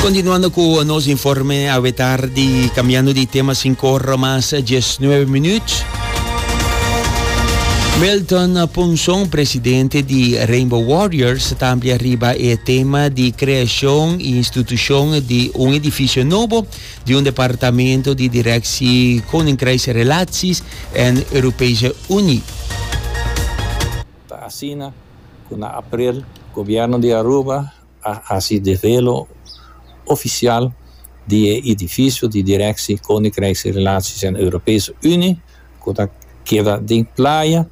Continuando cu nos informe awe tardi, cambiando di tema cinco ora mas diesnueve minuut. Milton Punson, presidente di Rainbow Warriors, ta amplia riba e tema di creacion y institucion di un edificio nobo di un departamento di directie Koninkrijksrelaties en Europese Unie. Ta asina cu na april Gobierno di Aruba a haci develo oficial di e edificio di Direcci Koninkrijks Relaties en Europese Unie cu ta keda den Playa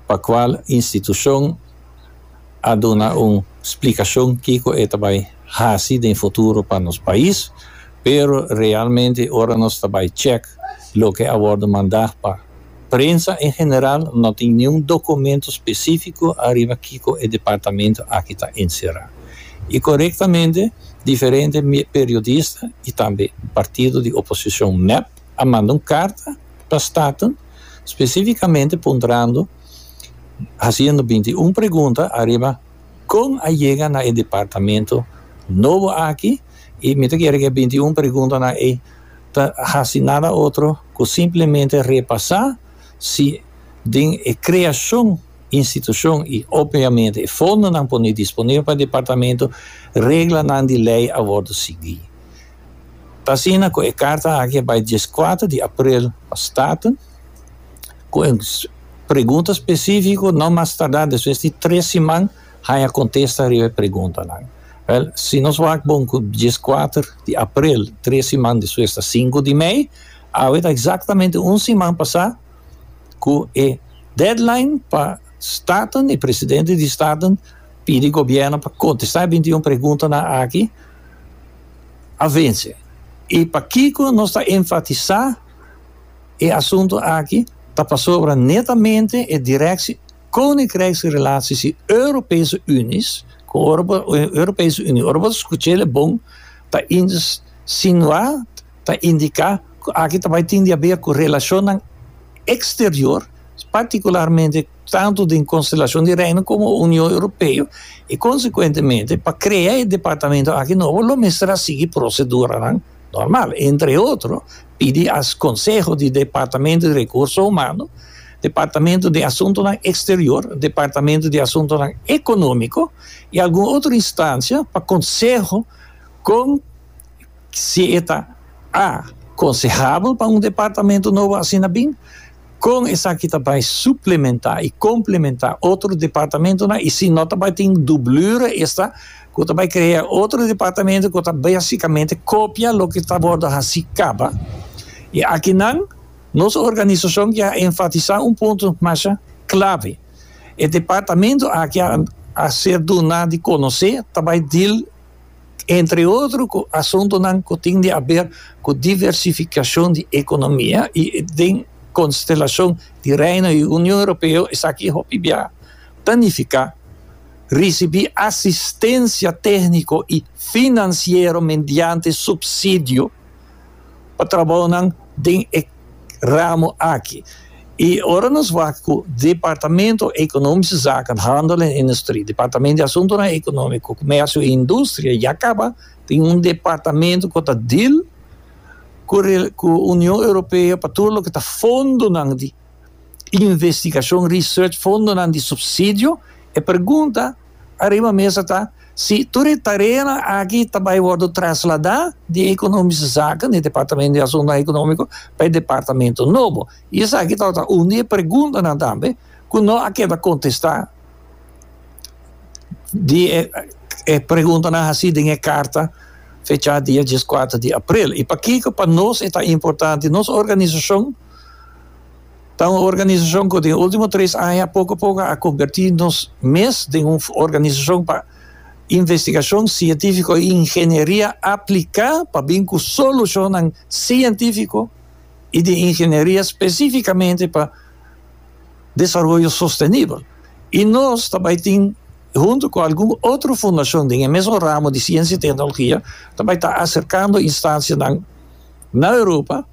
pa cual institucion a duna un splicacion kico e ta bay haci den futuro pa nos pais pero realmente ora nos ta bay check loke a wordo manda pa prensa en general no tin niun documento specifico ariba kico e departamento aki ta encera. Y corectamente diferente periodista y tambe partido di oposicion mep a manda un carta pa Staten specificamente puntrando haciendo binti un pregunta ariba con a yega na e departamento nobo aki y mi ta kere ke binti un pregunta nan ey ta hasi nada otro cu simplemente repasa si den e creacion institucion y obviamente e fondonan pone disponibel pa e departamento reglanan di ley a wordo sigui. Ta asina cu e carta aki a bay diescuater di april pa Staten cu un pregunta specifico no mas tarda despues di tres siman. Haña kontesta riba e preguntanan. Wèl, si nos wak bon ku dieskuater di aprel, tres siman despues ta sinku di mei, awe ta eksaktamente un siman pasá ku e deadline pa Staten, e presidente di Staten pidi gobièrnu pa kontestá e bintiún preguntanan aki, a vense. I pakiko nos ta enfatisá e asuntu aki ta pasobra netamente e direkshi. Koninkrijks Relaties di Europese Unie ku Europese Unie. Ora bo ta skucha el e bon pa insinua, ta indiká ku aki ta bai tin di haber ku relashonnan eksterior, partikularmente tantu den Konstelashon di Reino komo Union Europeo, i konsekuentemente pa krea e departamento aki nobo lo mester a sigui proseduranan. normal, entre otro, pidi as Conseho di Departamento di Recurso Humano, Departamento di Asuntonan Exterior, Departamento di Asuntonan Economico y algun otro instancia pa conseho con si e ta a, consehabel pa un departamento nobo asina bin, Kon esaki ta bai suplementá i komplementá otro departamentunan i si no ta bai tin dublura esta ku ta bai krea otro departamento ku ta basikamente kopia loke ta wòrdu hasi kaba? I aki nan nos organisashon ya a enfatisá un punto masha klave, e departamento aki a ser duná di konosé ta bai dil. entre otro cu asuntonan cu tin di haber cu diversificacion di economia y den constelacion di Reino y Union Europeo esaki hopi bia ta nifica ricibi asistencia tehnico y financiero mediante subsidio. pa trabaonan den e ramo aki. Y ora nos wak cu Departamento Economische Zaken, Handel en Industrie, Departamento di Asuntonan Economico, Comercio y Industria ya caba tin un departamento cu ta deal cu Union Europeo pa tur loke ta fondonan di Investigacion Research fondonan di subsidio. E pergunta ariba mesa ta si tur e tareanan aki ta bay wordo traslada di Economische Zaken, di Departamento di Asuntonan Economico, pa e departamento nobo. Y esaki tabata un di e perguntanan tambe cu no a keda contesta di e e preguntanan haci den e carta fecha dia diescuater di april. Y pakico pa nos e ta importante? Nos organisacion. Ta un organisacion cu den ultimo tres aña poco poco a converti nos mes den un organisacion pa investigacion cientifico y ingenieria aplica pa bin cu solucionnan cientifico y di ingenieria specificamente pa desaroyo sostenibel y nos ta bay tin hunto cu algun otro fundacion den e mesun ramo di ciencia y tecnologia ta bay ta acercando instancianan na Europa.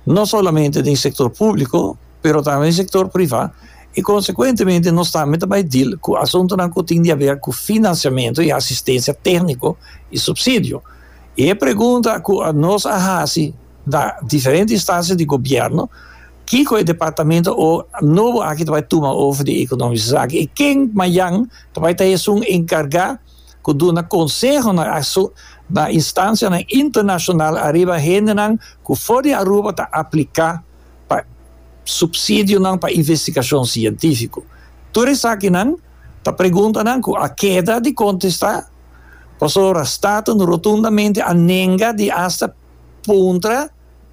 no solamente den sector publico pero tambe den sector priva y consecuentemente nos tambe ta bay deal cu asuntonan cu tin di haber cu financiamento y asistencia tecnico y subsidio y e pregunta cu nos a haci na diferente instancia di gobierno kico e departamento o nobo aki ta bay tuma over di economische zaken y ken mayan ta bay ta esun encarga. ku duna konseho na asu na instansianan internashonal ariba hendenan ku for di Aruba ta apliká pa supsidionan pa investigashon sientífiko. Tur esakinan ta preguntanan ku a keda di kontestá pasobra Staten rotundamente a nenga di asta puntra.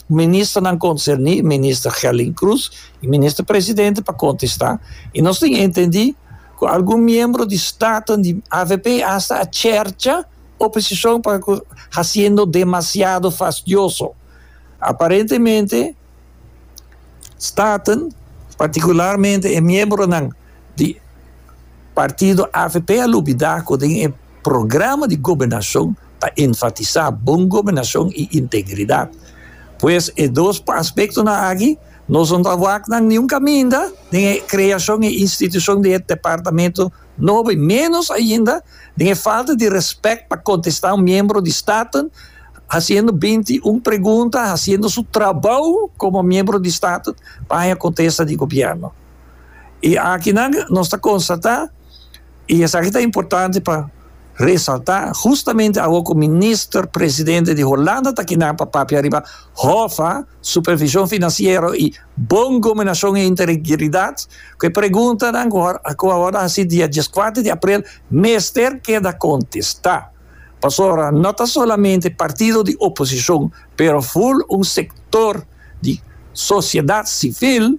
Ministernan konserní, Minister Gelling Cruz i Minister Presidente pa kontestá i nos tin entendí ku algun miembro di stafnan di avp asta a chercha oposishon pa ku hasiendo demasiado fastioso. Aparentemente stafnan, partikularmente e miembronan di partido avp a lubidá ku den e. programa di gobernashon ta enfatisá bon gobernashon i integridat. Pues e dos aspektonan aki no son ta wak nan niun kaminda den e kreashon i institushon di e departamentu nobo i ménos ainda den e falta di rèspèt pa kontestá un miembro di Staten hasiendo binti un pregunta hasiendo su trabou komo miembro di Staten pa haña kontesta di gobièrnu. I akinan nos ta konstatá. Y esaki ta importante pa resalta, justamente awo cu Minister Presidente di Holanda ta kinan pa papia riba Hoffa, Supervision Financiero y Bon Gobernacion y Integridad, cu e preguntanan cu awor a haci dia dieskuater di aprel mester keda contesta. Pasobra no ta solamente partido di oposicion, pero full un sector. di sosiedat sivil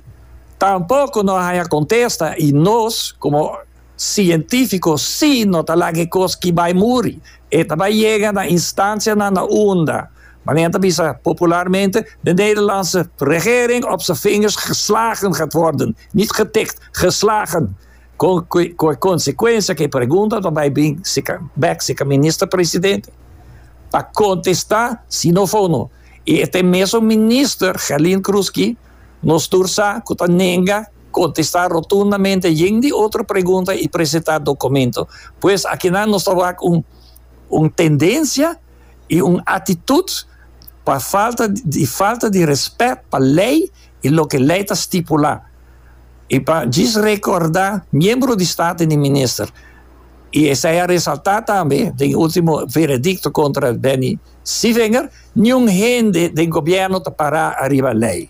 tampoko no a haña kontesta i nos komo sientífiko si no ta laga e kos ki bai muri. E ta bai yega na instansianan na unda, manera nan ta bisa popularmente, de Nederlandse regering op z'n vingers geslagen gaat worden, niet getikt, geslagen, kon ku e konsekuensia ku e pregunta ta bai bring sika bèk sika minister-president pa kontestá si no fono. y e ta e mesun minister Gelin Krusky nos tur sa cu ta nenga contesta rotundamente yen di otro pregunta y presenta documento. Pues akinan nos ta wak un un tendencia y un actitud pa falta di falta di respet pa ley y loke ley ta stipula y pa djis recorda miembro di staten y minister y esey a resalta tambe den ultimo veredicto contra Benny Si vinger, niun hende den gobierno ta para ariba ley.